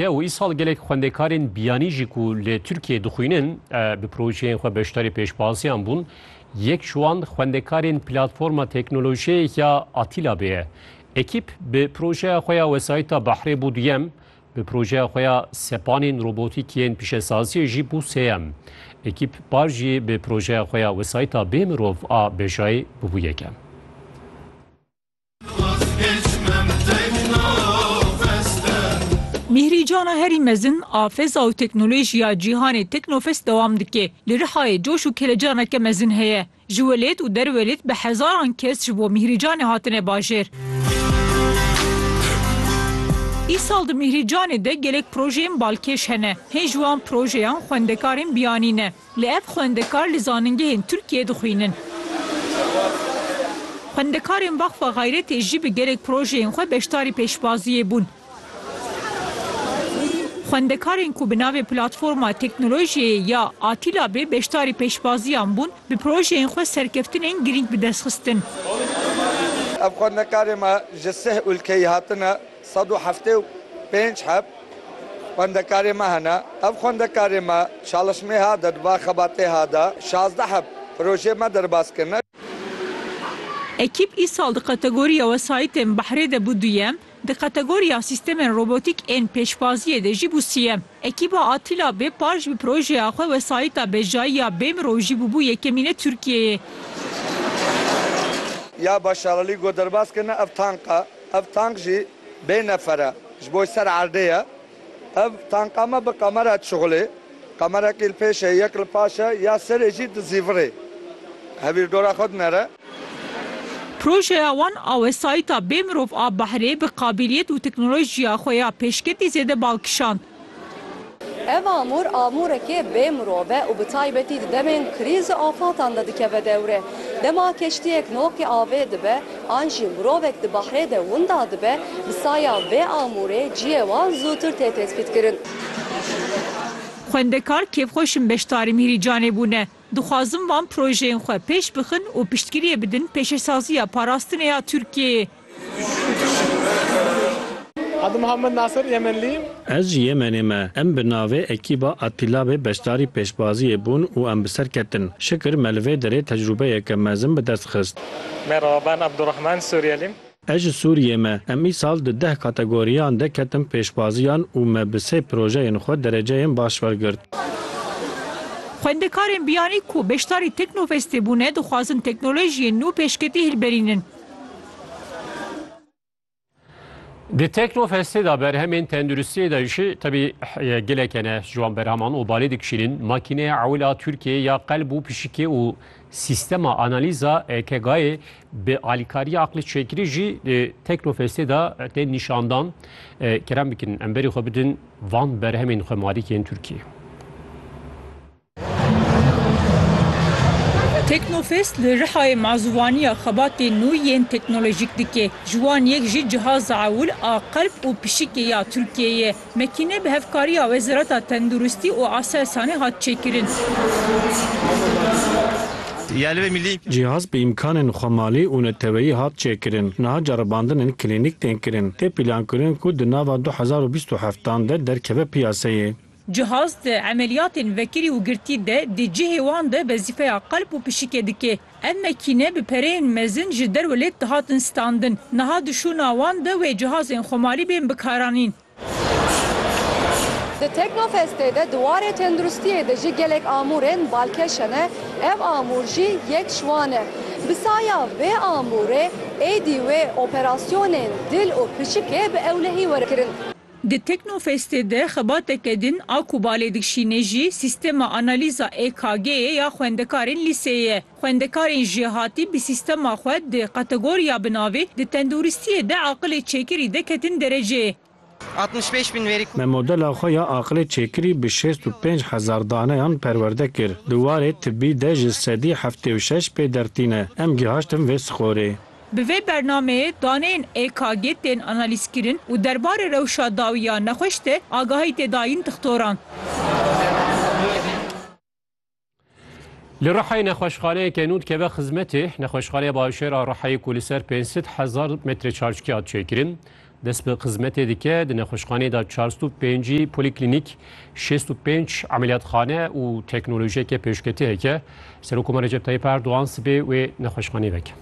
Ya û îsal gelek xwendekarên biyanî jî ku li Tirkiyeyê dixwînin bi projeyên xwe beşdarî pêşbaziyan bûn. Yek ji wan xwendekarên platforma teknolojiyê ya Atîla Bê ye. Ekîp bi projeya xwe ya wesayîta behrê bû duyem, bi projeya xwe ya sepanên robotîk yên pişesaziyê jî bû sêyem. Ekîp par jî bi projeya xwe ya wesayîta bê mirov a Bejayê bûbû yekem. Mîhrî Cana herî mezin a feza û teknolojiya cîhanê Teknofest dewam dike. Li Rihayê coş û kelecaneke mezin heye. Ji welêt û derwelêt bi hezaran kes ji bo Mîhrî Canê hatine bajêr. Îsal di Mîhrî Canê de gelek projeyên balkêş hene. Hên ji wan projeyan xwendekarên biyanî ne. Lê ev xwendekar li zanîngehên Tirkiyeyê dixwînin. Xwendekarên Vaxfa Xayretê jî bi gelek projeyên xwe beşdarî pêşbaziyê bûn. Xwendekarên ku bi navê Platforma Teknolojiyeyê ya Atîlabê beşdarî pêşbaziyan bûn, bi projeyên xwe serkeftinên girîng bi dest xistin. Ev xwendekarên me ji sih ûlkeyî hatine. Sed û heftê û pênc heb xwendekarê me hene. Ev xwendekarê me çalişmê ha de di va xebatê ha de şazdeh heb projeyê me derbas kirine. Ekîp îsal di kategoriya wesayîtên behrê de bû duyem, di kategoriya sîstemên robotîk ên pêşwaziyê de jî bû siyem. Ekîba Atîla Bêpar ji bi projeya xwe wesayîta bejayî ya Bêmirov jî bûbû yekemîne Tirkiyeyê. Ya Başaralî got derbas kirine ev tank e. Ev tank jî bê nefer e. Ji bo ser erdê ye. Ev tanka me bi qamera dişuxulê. Qamerekî li pêş e, yek li paş e, ya serê jî di zîvirê. Hevîrdora xwe dinere. Projeya wan a wesayîta bêmirov a behrê bi qabîliyet û teknolojiya xwe ya pêşketî zêde bal kişand. Ev amûr amûrekê bê mirov e û bi taybetî di demên krîz û afatan de dikeve dewre. Dema keştiyek noqî avê dibe an jî mirovek di behrê de winda dibe, bi saya vê amûrê ciyê wan zûtir tê tespîtkirin. Xwendekar kêfxweş in beşdarî Mîrîcanê bûne. Dixwazin van projeyên xwe pêş bixin û piştgiriyê bidin pêşesaziya parastinê ya Tirkiyeyê. Adım Muhammed Nasır, Yemenliyim. Ez ji Yemenê me. Em bi navê Ekîba Atîlabê beşdarî pêşbaziyê bûn û em bi ser ketin. Şikir me li vê derê tecrûbeyeke mezin bi dest xist. Merhaba, ben Abdurrahman, Suriyeliyim. Ez ji Sûriyê me. Em îsal di deh kategoriyan de ketin pêşbaziyan û me bi sê projeyên xwe dereceyên baş wergirt. Xwendekarên biyanî ku beşdarî Teknofestê bûne dixwazin teknolojiyên nû pêşketî hilberînin. Di Teknofestê de berhemên tenduristiyê de jî tebî geleke ne ji wan berheman û balê dikişînin makîneya ewila Tirkiyeyê ya qelb û pişikê û sîstema analîza EKG'yê bi alîkariya aqlê çêkirî jî di Teknofestê de tên nîşandan. Kerem bikin em berî xwe bidin van berhemên xwemalîkên Tirkiyeyê. Teknofest li Rihayê mazûvaniya xebatên nû yên teknolojîk dike. Ji wan yek jî cihaza ewil a qelb û pişikê ya Tirkiyeyê ye. Mekîne bi hevkariya Wezareta Tenduristî û Aselsanê hat çêkirin. Cihaz bi îmkanên xwe malî û neteweyî hat çêkirin. Niha ceribandin in klînîk tên kirin. Tê pîlankirin ku di nava du hezar û bîst û heftan de derkeve piyaseyê. Cihaz di emeliyatên vekirî û girtî de di cihê wan de wezîfeya qelb û pişikê dike. Ev mekîne bi pereyên mezin ji derwe lêt dihatin standin. Niha di şûna wan de wê cihazên xomalî bên bikaranîn. Di Teknofestê de di warê tenduristiyê de jî gelek amûrên balkêş hene, ev amûr jî yek ji wan e. Bi saya vê amûrê êdî wê operasyonên dil û pişikê bi ewlehî were kirin. Di Teknofestê de xebateke din a ku balê dikşînê jî sîstema analîza EKG'ê ya xwendekarên lîseyê ye. Xwendekarên jêhatî bi sîstema xwe di kategoriya bi navê Di tenduristiyê de aqilê çêkirî de ketin dereceyê. Altmış pênc bin verî ku. Me modela xwe ya aqilê çêkirî bi şêst û pênc hezar daneyan perwerde kir. Di warê tibî de ji sedî heftê û şeş pê der tîne. Em gihaştin vê skorê. Bi vê bernameyê daneyên EKG tên analîzkirin û derbarê rewşa dawî ya nexweş de agahî tê dayîn dixtoran. Li Rihayê nexweşxaneyeke nû dikeve xizmetê. Nexweşxaneya Başêr a Rihayê ku li ser pênc sed hezar metre çarçikî hat çêkirin, Dest bi xizmetê dike, di nexweşxaneyê de çar sed û pêncî polîklînîk, şêst û pênc emeliyatxane û teknolojiyeke pêşketî heke. Serokkomar Recep Tayyîp Erdogan sibê wê nexweşxaneyê veke.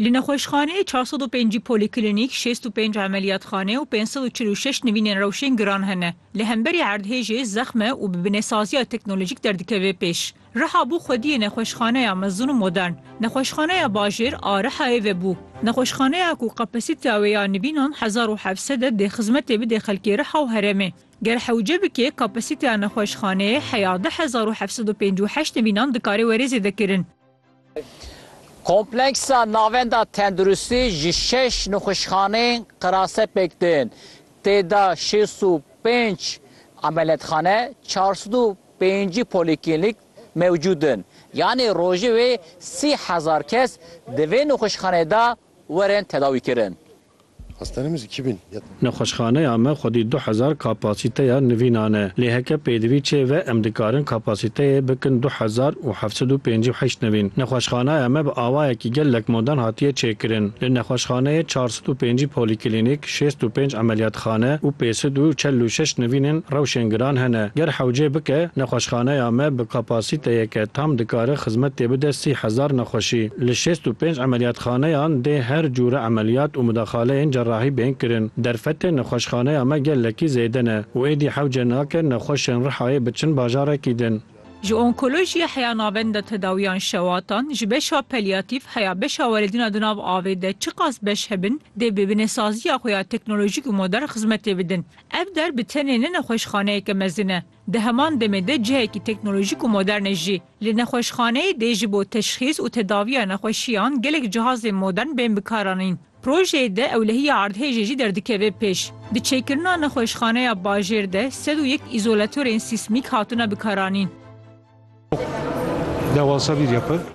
Li nexweşxaneyê çar sed û pêncî polîklinîk, şêst û pênc emeliyatxane û pênc sed û çil û şeş nivînên rewşên giran hene. Li hemberî erdhêjê zexm e û bi binesaziya teknolojîk derdikeve pêş. Riha bû xwediyê nexweşxaneya mezin û modern. Nexweşxaneya bajêr a Rihayê vebû. Nexweşxaneya ku kapasîteya wê ya nivînan hezar û heft sed e dê xizmetê bidê xelkê Riha û herêmê. Ger hewce bike kapasîteya nexweşxaneyê heya du hezar û heft sed û pêncî û heşt nivînan dikarê were zêdekirin. Kompleksa Navenda Tenduristî ji şeş nixweşxaneyên qirase pêk tên, tê de şêst û pênc emeliyatxane, çar sed û pêncî polîklînîk mewcûd in. Yanî rojê wê sî hezar kes di vê nixweşxaneyê de werin tedawîkirin. Nexweşxaneya me xwedî du hezar kapasîteya nivînan e. Lê heke pêdivî çê ve em dikarin kapasîteyê bikin du hezar û heft sed û pêncî û heşt nivîn. Nexweşxaneya me bi awayekî gelek modern hatiye çêkirin. Li nexweşxaneyê çar sed û pêncî polîklînîk, şêst û pênc emeliyatxane û pê sed û çel û şeş nivînên rewşên giran hene. Ger hewcê bike, nexweşxaneya me bi kapasîteyeke tam dikare xizmetê bide sî hezar nexweşî. Li şêst û pênc emeliyatxaneyan dê her cûre emeliyat û mudaxaleyên cerrahî bên kirin. Derfetên nexweşxaneya me gelekî zêde ne û êdî hewce nake nexweşên Rihayê biçin bajarekî din. Ji onkolojiyê heya navend de tedawiyan şewatan, ji beşa peliyatîf heya beşa werêdina di nav avê de çiqas beş hebin dê bi binêsaziya xwe ya teknolojîk û modern xizmetê bidin. Ev der bi tenê ne nexweşxaneyeke mezin e. Di heman demê de cihekî teknolojîk û modern e jî. Li nexweşxaneyê dê ji bo teşxîs û tedaviya nexweşiyan gelek cihazên modern bên bikaranîn. Projeyê de ewlehiya erdhêjê jî derdikeve pêş. Di çêkirina nexweşxaneya bajêr de sed û yek îzolatorên sîsmîk hatine bikaranîn.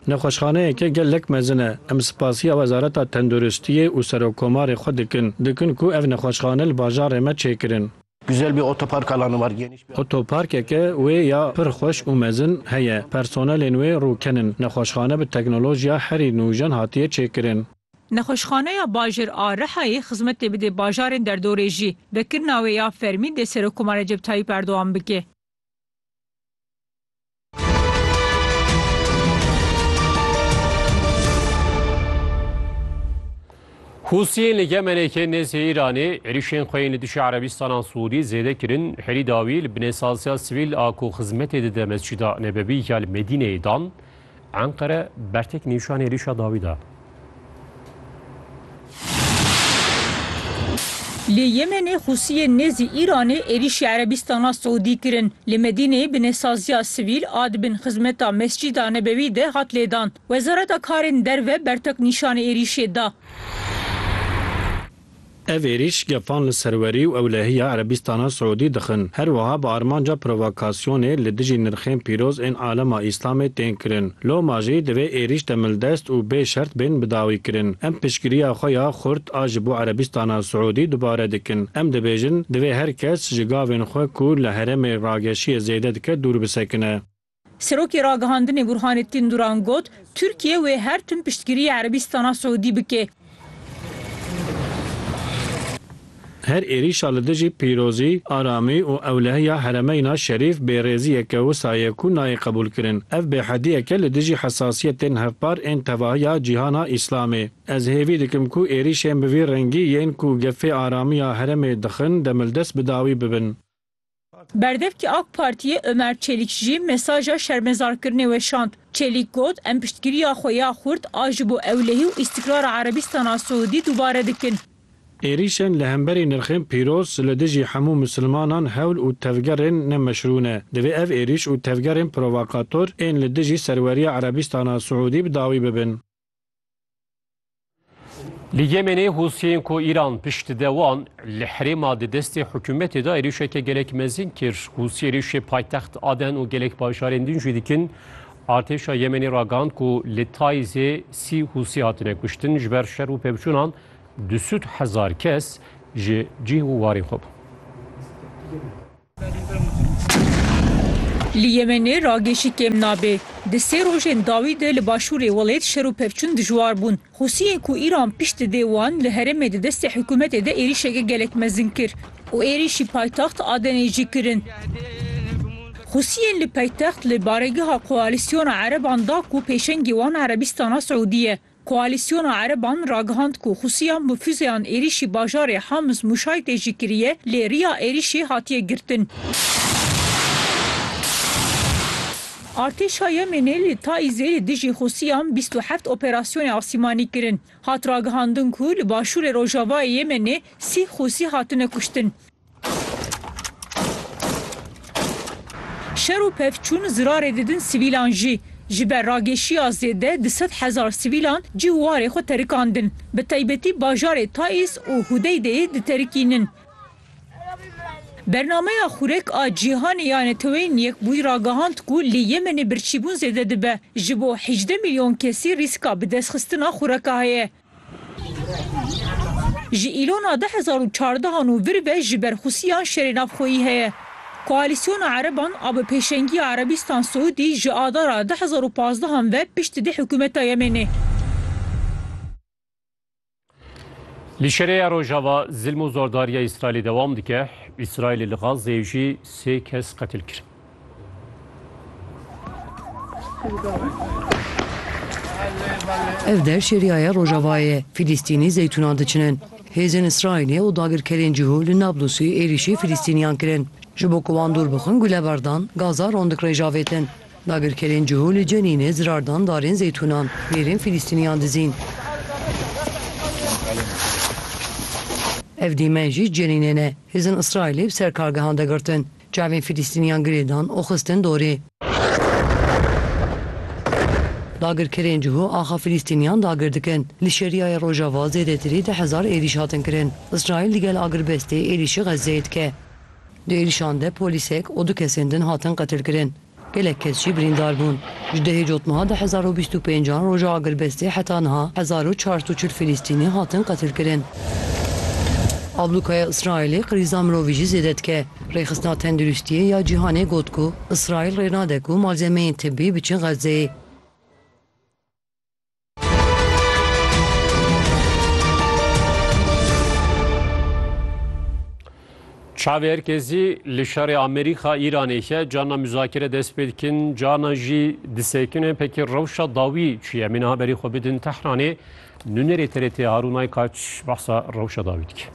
Nexweşxaneyeke gelek mezin e. Em spasiya Wezareta Tenduristiyê û Serokkomarê xwe dikin, dikin ku ev nexweşxane li bajarê me çêkirin. Güzel bir otopark alanı var geniş bir. Otoparkeke wê ya pir xweş û mezin heye. Personelên wê rûken in. Nexweşxane bi teknolojiya herî nûjen hatiye çêkirin. Nexweşxaneya bajêr a Rihayê xizmetê bidê bajarên derdorê jî. Vekirina wê ya fermî dê Serokkomar Recep Tayyîp Erdogan bike. Hûsiyên li Yemenê ke nêzî Îranê êrîşên xwe yên li dijî Erebistanan Sûdî zêde kirin, herî dawî li binêsaziya sivîl a ku xizmetê dide Mescîda Nebewî ya li Medîneyê dan, Enqere bertek nîşanê êrîşa dawî da. Li Yemenê Husiyên nêzî Îranê êrîşî Erebîstana Siûdî kirin. Li Medîneyê binêsaziya sivîl a di bin xizmeta Mescîda Nebewî de hat lêdan. Wezareta Karên Derve bertek nîşanî êrîşê da. Ev êrîş gefan li serwerî û ewlehiya Erebîstana Siûdî dixin, her wiha bi armanca provokasyonê li dijî nirxên pîroz ên alema Îslamê tên kirin. Loma jî divê êrîş demildest û bê şert bên bidawîkirin. Em piştgiriya xwe ya xurt a ji bo Erebîstana Siûdî dubare dikin. Em dibêjin, divê her kes ji gavên xwe ku li herêmê rageşiyê zêde dike dûr bisekine. Serokê Ragihandinê Burhanettin Duran got, Tirkiye wê her tim piştgiriyê Erebîstana Siûdî bike. Her êrîşa li dijî pîrozî, aramî û ewlehiya heremeyna şerîf bêrêziyek e wisa ye ku nayê qebûlkirin. Ev bêhediyek e li dijî hesasiyetên hevpar ên tevahiya cîhana Îslamê. Ez hêvî dikim ku êrîşên bi vî rengî yên ku gefê aramiya heremê dixin demildest bi dawî bibin. Berdevkî ak Partiyê Omer Çelîk jî mesaja şermezarkirinê weşand. Çelîk got, Em piştgiriya xwe ya xurt a ji bo ewlehî û îstîkrara Erebîstana Siûdî dubare dikin. Êrîşên li hemberî nirxên pîroz li dijî hemû misilmanan hewl û tevgerên ne meşrû ne. Divê ev êrîş û tevgerên provokator ên li dijî serweriya Erebîstana Siûdî bi dawî bibin. Li Yemenê Hûsiyên ku Îran pişt dide wan li herêma di destê hikûmetê de êrîşeke gelek mezin kir. Hûsî êrîşê paytext Aden û gelek bajarên din jî dikin. Artêşa Yemenê ragihand ku li Taîzê sî Hûsî hatine kuştin ji ber şer û pevçûnan du sûd hezar kes ji cih û warên xwe bûn. Li Yemenê ragêşî kêm nabê. Di sê rojên dawî de li başûrê welêt şer û pevçûn dijwar bûn. Husiyên ku Îran pişt dide wan li herêmê di destê hikûmetê de êrîşeke gelek mezin kir û êrîşî paytaxt Adenê jî kirin. Husiyên li paytext li baregeha koalîsyona ereban da ku pêşengê wan Erebîstana Siûdî ye. Koalîsyona ereban ragihand ku Husiyan bi fûzeyan êrîşî bajarê Hamis Mûşay tê jî kiriye, lê riya êrîşê hatiye girtin. Artêşa Yemênê li Taîzê li dijî Husiyan bîst û heft operasyonê asîmanî kirin. Hat ragihandin ku li başûrê rojavayê Yemênê sî Husî hatine kuştin. Şer û pevçûn zirarê didin sivîlan jî. Ji ber ragêşiya zêde du sed hezar sivîlan cih û warê xwe terikandin. Bi taybetî bajarê Taîz û Hudeydeyê diterikînin. Bernameya Xurek a Cîhanê ya Neteweyên Yekbûyî ragihand ku li Yemenê birçîbûn zêde dibe. Ji bo hîjdeh milyon kesî rîska bidestxistina xureka heye. Ji îlona du hezar û çardeh an û vir be ji berxwisiyan şerê navxweyî heye. Koalîsyona ereban a bi pêşengiya Erebîstan Siûdî ji adara du hezar û pazdeh an ve pişt dide hikûmeta Yemênê. Li şerê ya Rojava zilm û zordariya Îsraîlê dewam dike. Îsraîlê li Gazeyê jî sê kes qetil kir. Ev der şêriyaya Rojavayê, Filistînî zeytûnan diçinin. Hêzên Îsraîlê û dagirkerên cihû li Nablusî êrîşî Filistîniyan kirin. Ji bo ku wan dûr bixin guleberdan, gaza rondik rê javêtin. Dagirkerên cihû li Cenînê zirar dan darên zeytûnan, bêrên Filistîniyan dizîn. Ev dîmen jî Cenînê ne. Hêzên Îsraîlê bi ser kargehan de girtin. Çavên Filistîniyan girêdan û xistin dorê. Dagirkerên cihû axa Filistîniyan dagir dikin. Li Şeriyayê Rojava zêdetirî deh hezar êrîş hatin kirin. Îsraîl digel agirbestê êrîşî Xezzeyê dike. Di êrîşan de polîsek û du kesên din hatin qetilkirin. Gelek kes jî birîndar bûn. Ji dehê cotmeha du hezar û bîst û pênc an roja agirbestê heta niha hezar û çar sed û çil Filîstînî hatin qetilkirin. Ablûkaya Îsraîlê qirîza mirovî jî zêde dike. Rêxistina Tenduristiyê ya Cîhanê got ku Îsraîl rê nade ku malzemeyên tibbî biçin Xezzeyê. Çavê herkesî li şerê Amerîka Îranê ke cana muzakere dest pê dikin cana jî disekine pekê rewşa dawî çiye min haberî xwe bidin Tehranê nûnerê TRT Harûnay Kaç behsa rewşa dawî dike.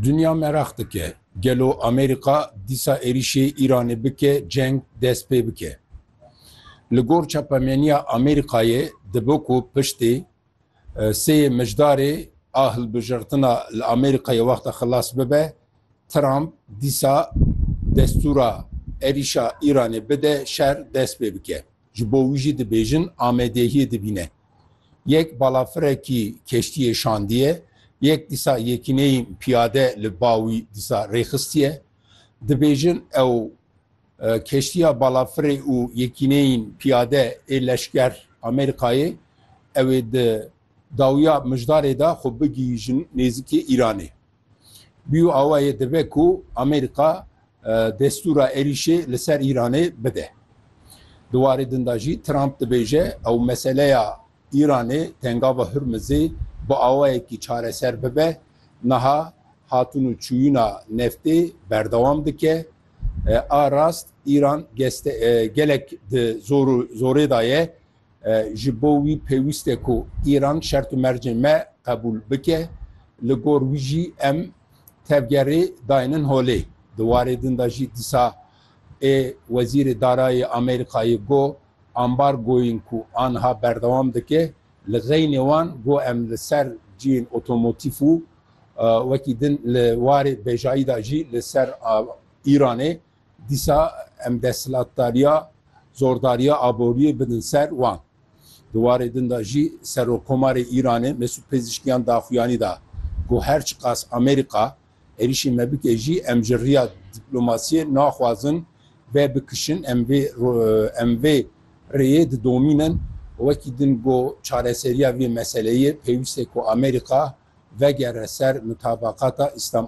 Dinya meraq dike gelo Amerîka dîsa êrîşê Îranê bike ceng dest pê bike. Li gor çapemeniya Amerîkayê dibe ku piştê sêyê mijdarê a hilbijirtina li Amerîkayê wexta xilas bibe, Trump dîsa destûra êrîşa Îranê bide şer dest pê bike. Ji bo wî jî dibêjin amedehiyê dibîne. Yek balafirekî keştiyê şandiye, yek dîsa yekîneyîn piyade li ba wî dîsa rêxistiye. Dibêjin ew keştiya balafirê û yekîneyîn piyade ê leşker Amerîkayê ew ê di dawiya mijdarê de xwe bigihîjin nêzikê Îranê. Bîyo awa yê dibe ku Amerîka destûra êrîşê li ser Îranê bide. Di warê din da jî Trump dibêje ew meseleya Îranê Tengava Hurmizê bi awayekî çareser bibe, niha hatûn û çûyîna neftê berdewam dike. A rast Îran gelek di zorê de ye. Ji bo wî pêwîst e ku Îran şert û mercên me qebûl bike, li gor wî jî em tevgerê dayênin holê. Di warê din de jî disa ê Wezîrê Darayê Amerîkayê got, Ambargoyên ku aniha berdewam dike, li xeynê wan got em li ser cihên otomotîf û wekî din li warê bêjayî de jî li ser Îranê Dîsa em desthilatdariya zordariya aboriyê bidin ser wan. Di warê din de jî Serokkomarê Îranê Mesûd Pezîşkiyan daxuyanî da ku her çiqas Amerîka êrîşê me bike jî em ji riya dîplomasiyê naxwazin ve bikişin, em vê em vê rêyê didomînin. Wekî din got, çareseriya vê meseleyê pêwîst e ku Amerîka vegere ser mutabaqata Îslam.